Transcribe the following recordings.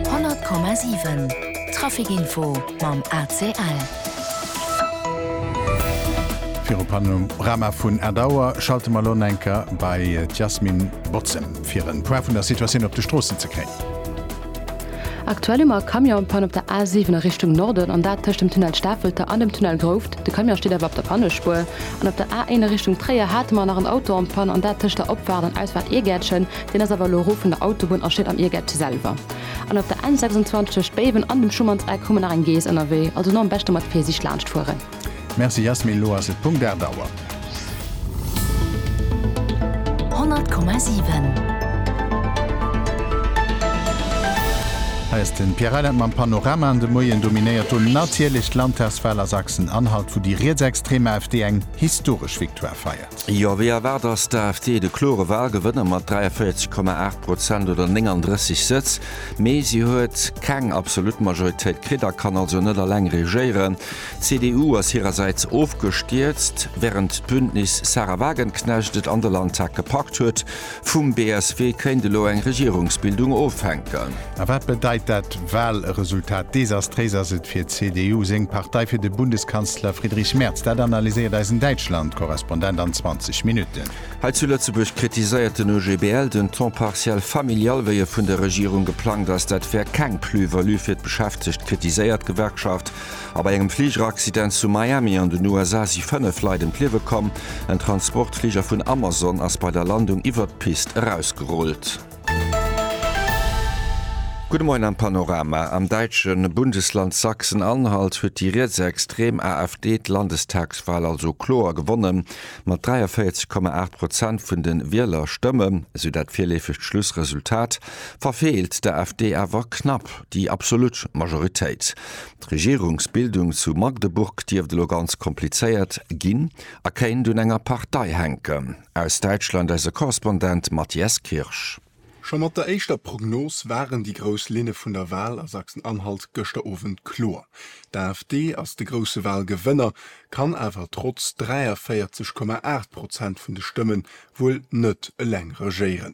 100,7 Trafic Info mam ACL. Viru Panorama vun Ed Auer schalte mer elo en enker bei d'Yasmin Bozem fir en Point vun der Situatioun op de Stroossen ze kréien. Aktuell hu mer e Camionspanne op der A7 a Richtung Norden, an dat tëscht dem Tunnel Stafelter an dem Tunnel Grouft. De Camion steet awer op der Pannespuer. An op der A1 a Richtung Tréier hate mer nach en Auto en Panne, an dat tëscht der Opfaart an Ausfaart Iergäertchen. Deen ass awer elo erof vun der Autobunn a steet am Irgett selwer. An op der N 26 tëscht Béiwen an dem Schumannseck hu mer nach eng Geess ënnerwee, also elo am beschte mat Virsiicht laanscht fueren. Merci Jasmin, elo ass et Punkt 8 Auer. 100,7. Hei ass den Pierre Reyland mam Panorama an de Moien dominéiert do natierlech d'Landtagswahl a Sachsen, Anhalt wou déi rietsextrem AfD eng historesch Victoire feiert. Jo, wéi erwaart ass d'AfD de klore Walgewënner mat 43,8 Prozent oder 39 Sëtz. Mee si huet keng absolut Majoritéit kritt a kann also net alleng regéieren. D'CDU ass hirersäits ofgestierzt, wärend d'Bündnis Sahra Wagenknecht et an de Landtag gepackt huet. Vum BSW kéint elo eng Regierungsbildung ofhänken. A wat bedeit dat Walresultat? Desastréis ass et fir d'CDU seng Partei, fir de Bundeskanzler Friedrich Merz. Dat analyséiert eisen Däitschland-Korrespondent an 20 Minutten. Hei zu Lëtzebuerg kritiséiert den OGBL den Temps partiel familial, wéi e vun der Regierung geplangt ass. Dat wär keng Plus-value fir d'Beschäftegt, kritiséiert d'Gewerkschaft. A bei engem Fligeraccident zu Miami an den USA si 5 Leit ëm d'Liewe komm. En Transportfliger vun Amazon ass bei der Landung iwwert d'Pist erausgerullt. Gudde Moien am Panorama. Am däitsche Bundesland Sachsen-Anhalt huet déi rietsextrem AfD d'Landestagswal also kloer gewonnen, mat 43,8 Prozent vun de Wielerstëmme, esou dat virleefegt Schlussresultat, verfeelt d'AfD awer knapp déi absolut Majoritéit. D'Regierungsbildung zu Magdeburg dierft elo ganz komplizéiert ginn a kéint un enger Partei hänken. Aus Däitschland eise Korrespondent Matthias Kirsch. Scho mat der éischter Prognos waren déi grouss Linne vun der Wal a Sachsen-Anhalt gëschter Owend kloer. D'AfD ass de grousse Walgewënner, kann awer trotz 43,8 Prozent vun de Stëmme wuel net eleng regéieren.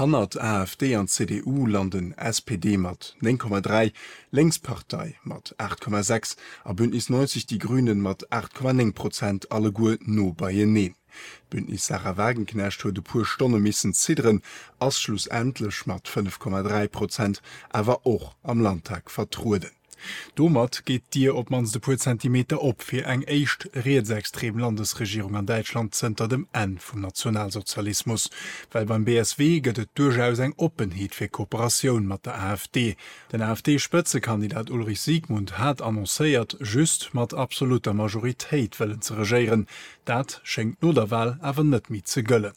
Hannert AfD an CDU landen SPD mat 9,3, Lénkspartei mat 8,6 a Bündnis 90 Die Grünen mat 8,9 Prozent alleguer no beieneen. D'Bündnis Sahra Wagenknecht huet e puer Stonne missen zidderen, ass schlussendlech mat 5,3 Prozent awer och am Landtag vertrueden. Domat geet d'Dier op d'mannst e puer Zentimeter op fir eng éischt rietsextrem Landesregierung an Däitschland zënter dem Enn vum Nationalsozialismus. Well beim BSW gëtt et duerchaus eng Oppenheet fir Kooperatioun mat der AfD. Den AfD-Spëtzekandidat Ulrich Siegmund hat annoncéiert, just mat absolutter Majoritéit wëllen ze regéieren. Dat schéngt no der Wal awer net méi ze gëllen.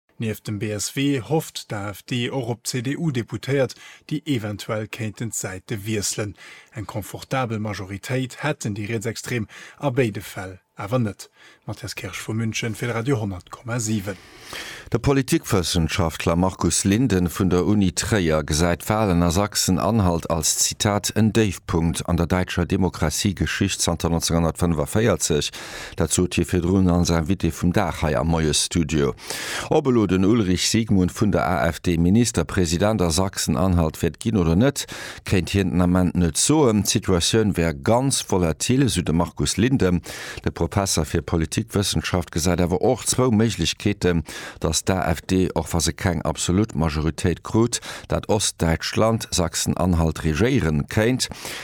Nieft dem BSW hofft d'AfD och op CDU-Deputéiert, déi eventuell kéinten d'Säite wiesselen. Eng confortabel Majoritéit hätten déi Rietsextrem a béide Fäll awer net. Matthias Kirsch vu München fir de Radio 10,7. De Politikwëssenschaftler Markus Linden vun der Uni Tréier gesäit d'Walen a Sachsen-Anhalt als, Zitat, en Déifpunkt an der däitscher Demokratiegeschicht zanter 1945. Dat sot hie virdrun als Invité vum Dag hei am Moiesstudio. Ob elo den Ulrich Siegmund vun der AfD Ministerpresident a Sachsen-Anhalt wäert ginn oder net, kéint hien den Ament net soen. D'Situatioun wär ganz volatil, sou de Markus Linden. De Professer fir Politikwëssenschaft gesäit awer och zwou Méiglechkeeten, datt d'AfD, och wa se keng absolut Majoritéit krut, dat Ostdäitschland, Sachsen-Anhalt, regéiere kéint.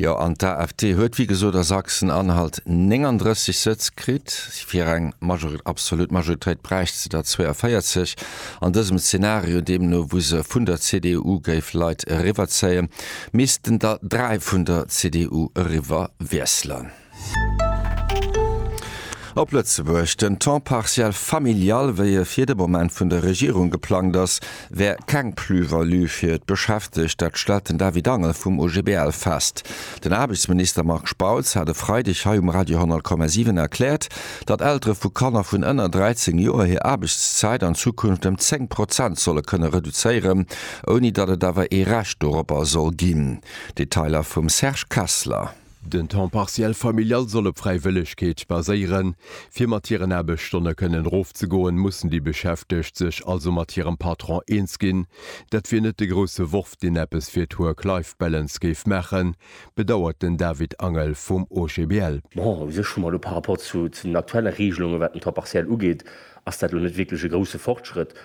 Jo, an d'AfD huet wéi gesot a Sachsen-Anhalt 39 Sëtz kritt. Fir eng absolut Majoritéit bräicht se der 42. An dësem Zenario deemno, wou se vun der CDU géif Leit eriwwerzéien, missten der dräi vun der CDU eriwwer wiesselen. Op Lëtzebuerg, Den Temps partiel familial, wéi e fir de Moment vun der Regierung geplangt ass, wär keng Plus-value fir d'Beschäftegt. Dat stellt den David Angel vum OGBL fest. Den Aarbechtsminister Marc Spautz hat e Freideg hei um Radio 10,7 erkläert, datt Eltere vu Kanner vun ënner 13 Joer hir Aarbechtszäit an Zukunft ëm 10 Prozent solle kënne reduzéieren, ouni datt et awer ee Recht doropper soll ginn. Detailer vum Serge Kessler. Den Temps partiel familial soll op Fräiwëllegkeet baséieren. Fir mat hiren Aarbechtsstonne kënnen erofzegoen, mussen déi Beschäftegt sech also mat hirem Patron eens ginn. Dat wier net de grousse Worf, deen eppes fir d'Work-Life-Balance géif maachen, bedauert den David Angel vum OGBL. Bon, u sech hu mer elo par rapport zu den aktuelle Regelungen, wat den Temps partiel ugeet, ass dat elo net wierklech e grousse Fortschrëtt.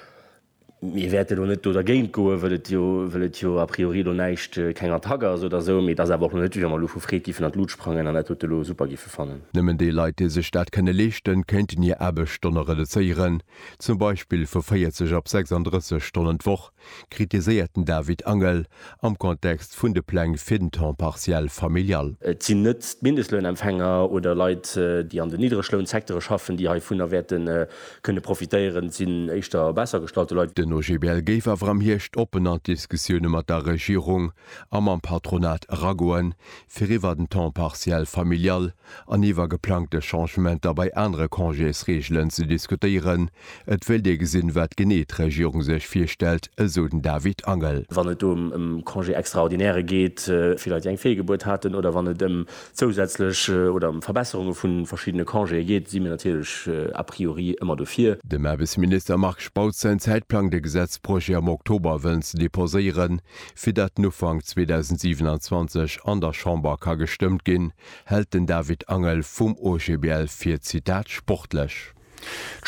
Mir wäerte lo net do dergéint goen, wëll et jo, wëll et jo a priori lo näischt, keng Attack ass oder esou. Mee et ass awer och lo net, wéi wa mer elo vu Freed giffen an d'Lut sprangen an dat dote lo super giffe fannen. Nëmmen déi Leit, déi sech dat kënne leeschten, kéinten hir Aarbechtsstonne reduzéieren, zum Beispill vu 40 op 36 Stonnen d'Woch, kritiséiert den David Angel am Kontext vun de Pläng fir den Temps partiel familial. Et sinn net d'Mindestlounempfänger oder Leit, déi an den Niddreglounsecteure schaffen, déi heivunner wäerte Kënne profitéieren, sinn éischter besser gestallte Leit. Den OGBL géif awer am Hierscht oppen an d'Diskussioune mat der Regierung a mam Patronat eragoen, fir iwwer den Temps partiel familial an iwwer geplangte Changementer bei anere Congésreegelen ze diskutéieren. Et wéilt ee gesinn, wat genee d'Regierung sech virstellt, esou den David Angel. Wann et do ëm Congé extraordinaire geet fir Leit, déi eng Feegebuert haten, oder wann et ëm zousätzlech oder ëm Verbesserunge vu verschiddene Congéë geet, si mir natierlech a priori ëmmer dofir. Dem Aarbechtsminister Marc Spautz säin Zäitplang, de Gesetzprojet am Oktober wëllen ze deposéieren, fir datt en Ufank 2027 an der Chamber ka gestëmmt ginn, hält den David Angel vum OGBL fir, Zitat, sportlech.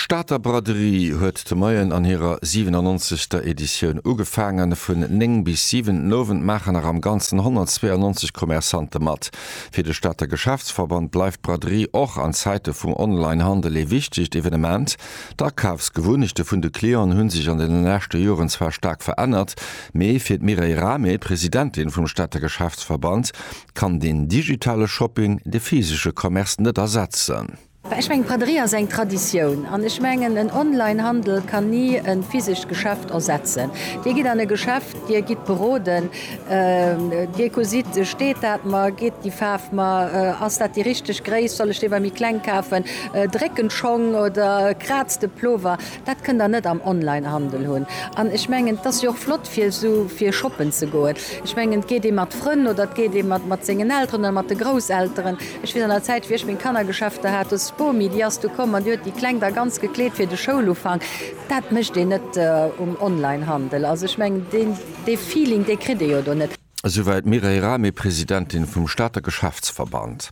D'Stater Braderie huet de Moien an hirer 97. Editioun ugefaangen. Vun 9 bis 7 den Owend maachen nach am Ganzen 192 Commerçante mat. Fir de Stater Geschäftsverband bleift d'Braderie och an Zäite vum Online-Handel ee wichtegt Evenement. D'Akafsgewunnechte vun de Clienten hu sech an deene leschte Joren zwar staark verännert, mee fir d'Mireille Rahmé, Presidentin vum Stater Geschäftsverband, kann den digitale Shopping de physesche Commerce net ersetzen. Ech mengen, d'Braderie ass eng Traditioun. An ech mengen, en Online-Handel kann ni e physescht Geschäft ersetzen. Dir gitt an e Geschäft, Dir gitt beroden, Dir gesitt, steet dat mer, geet déi Faarf mer, ass dat déi richteg Gréisst, soll ech dee bei méi kleng kafen, dréckt en Schong oder kraazt de Plover. Dat kënnt der net am Online-Handel hunn. An ech mengen, et ass jo och flott, fir esou fir shoppen ze goen. Ech mengen, et geet ee mat Frënn oder et geet ee mat mat sengen Elteren oder mat de Grousselteren. Ech weess an der Zäit, wéi ech meng Kannergeschäfter hat, do ass d'Bomi, déi ass du komm an déi huet déi Kleng da ganz gekleet fir de Schoulufank. Dat mécht een net um Online-Handel. Also ech mengen, deen dee Feeling, dee kritt ee jo do net. Esouwäit d'Mireille Rahmé, Presidentin vum Stater Geschäftsverband.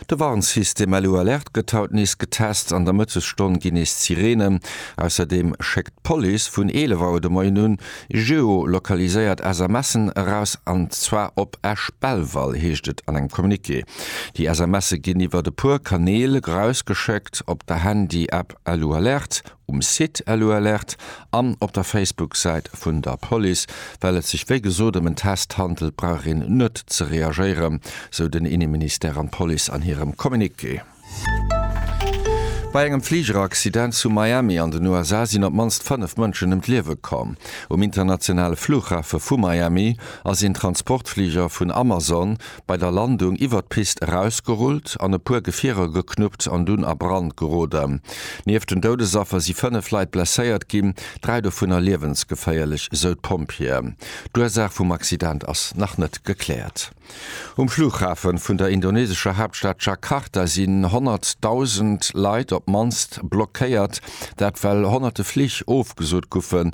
De Warnsystem LU Alerte gëtt haut nees getest. An der Mëttesstonn ginn nees d'Sireenen. Ausserdeem schéckt d'Police vun 11 Auer de Moien un geo-lokaliséiert SMSen eraus. An zwar op Esch-Belval, heescht et an engem Communiqué. Déi SMSe ginn iwwert e puer Kanäl erausgeschéckt, op der Handy-App LU Alerte, um Site Elualert an op der Facebook-Säit vun der Police. Well et sech wéi gesot ëm en Test handelt, brauch een net ze reagéieren, sou den Inneministère an d'Police an hirem Communiqué. Bei engem Fligeraccident zu Miami an den USA sinn op d'mannst fënnef Mënschen ëm d'Liewe komm. Um internationale Flughafe vu Miami ass een Transportfliger vun Amazon bei der Landung iwwert d'Pist erausgerullt an e puer Gefierer geknuppt an dunn a Brand geroden. Nieft den Doudesaffer si fënnef Leit blesséiert ginn, dräi dovunner liewensgeféierlech, esou d'Pompjeeën. D'Ursaach vum Accident ass nach net gekläert. Um Flughafe vun der indonesescher Haaptstad Jakarta sinn honnertdausend Leit op d'mannst blockéiert. Dat well honnerte Flich ofgesot goufen,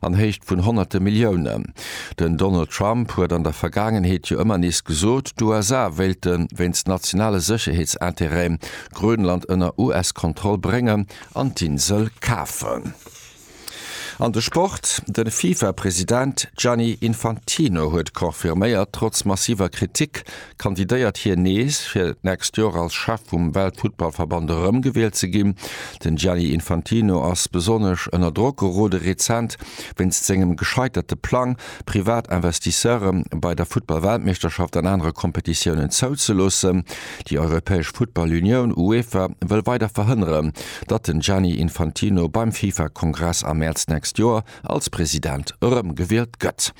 an Héicht vun honnerte Milliounen. Den Donald Trump huet an der Vergaangenheet jo ëmmer nees gesot, d'USA wéilte wéinst nationale Sécherheetsinterêten Grönland ënner US-Kontroll bréngen an d'Insel kafen. An de Sport, De FIFA-President Gianni Infantino huet confirméiert, trotz massiver Kritik Kandidéiert hien nees, fir d'nächst Joer als Chef vum Weltfuttballverband erëmgewielt ze ginn? Den Gianni Infantino ass besonnesch ënner Drock gerode rezent, wéinst sengem gescheiterte Plang, privat Investisseure bei der Futtball-Weltmeeschterschaft an anere Kompetitiounen zouzeloossen. Déi europäesch Futtball-Unioun, UEFA, wëll weider verhënneren, datt den Gianni Infantino beim FIFA-Kongress am Mäerz d'nächst Joer als President erëmgewielt gëtt.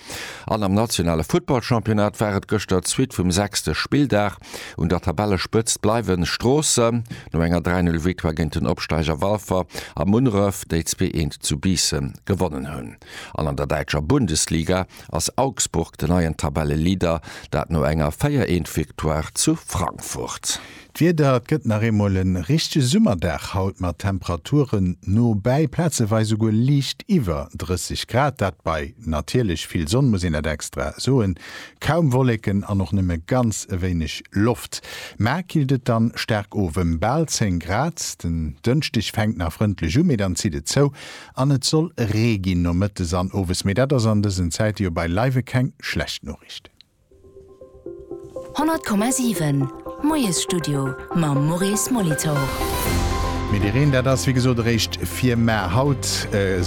An am nationale Futtballchampionnat war et gëschter d'Suite vum sechste Spilldag. Un der Tabellespëtzt bleiwen Stroossen, no enger 3, 0 Victoire géint den Opsteiger Walfer, a Munneref, déi 2, 1 zu Biissen gewonnen hunn. An an der däitscher Bundesliga ass Augsburg den neien Tabelleleader, dat no enger 4, 1 Victoire zu Frankfurt. D'Wieder, Et gëtt nach eemol e richtege Summerdag haut mat Temperaturen no bäi plazeweis esouguer liicht iwwer 30 Grad, dat bei natierlech vill Sonn, muss een dat extra soen, kaum Wolleken an och nëmme ganz e wéineg Loft. Mä killt et dann staark of ëm bal 10 Grad. Den Dënschdeg fänkt nach frëndlech u, mee dann zitt et zou an et soll Ree ginn nomëttes an owes. Mee dat ass an dësen Zäite jo beileiwe keng schlecht Noriichten. 100,7 Moiesstudio mam Maurice Molitor. Mee de Reen, dat ass wéi gesot eréischt fir mar. Haut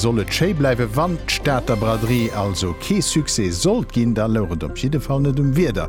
soll et schéi bleiwen. Wann d'Stater Braderie also kee Succès sollt ginn, da louch et op jidde Fall net um Wieder.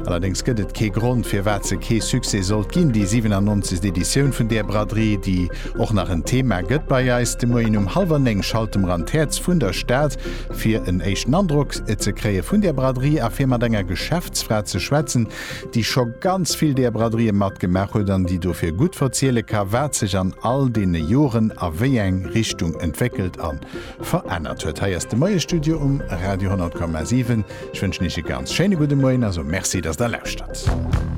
Allerdéngs gëtt et kee Grond, firwat se kee Succès sollt ginn, déi 97. Editioun vun där Braderie, déi och nach en Thema gëtt bei eis. De Moien um hallwer néng schalte mer an d'Häerz vun der Stad, fir en éischten Androck ze kréie vun där Braderie a fir mat enger Geschäftsfra ze schwätzen, déi scho ganz vill där Braderien matgemaach huet an déi dofir gutt verziele ka wat sech an all deene Joren a wéi eng Richtung entwéckelt a verännert huet. Hei ass de Moiestudio um Radio 10,7. Ech wënschen Iech e ganz schéine gudde Moien a soe Merci, datt Der lauschtert.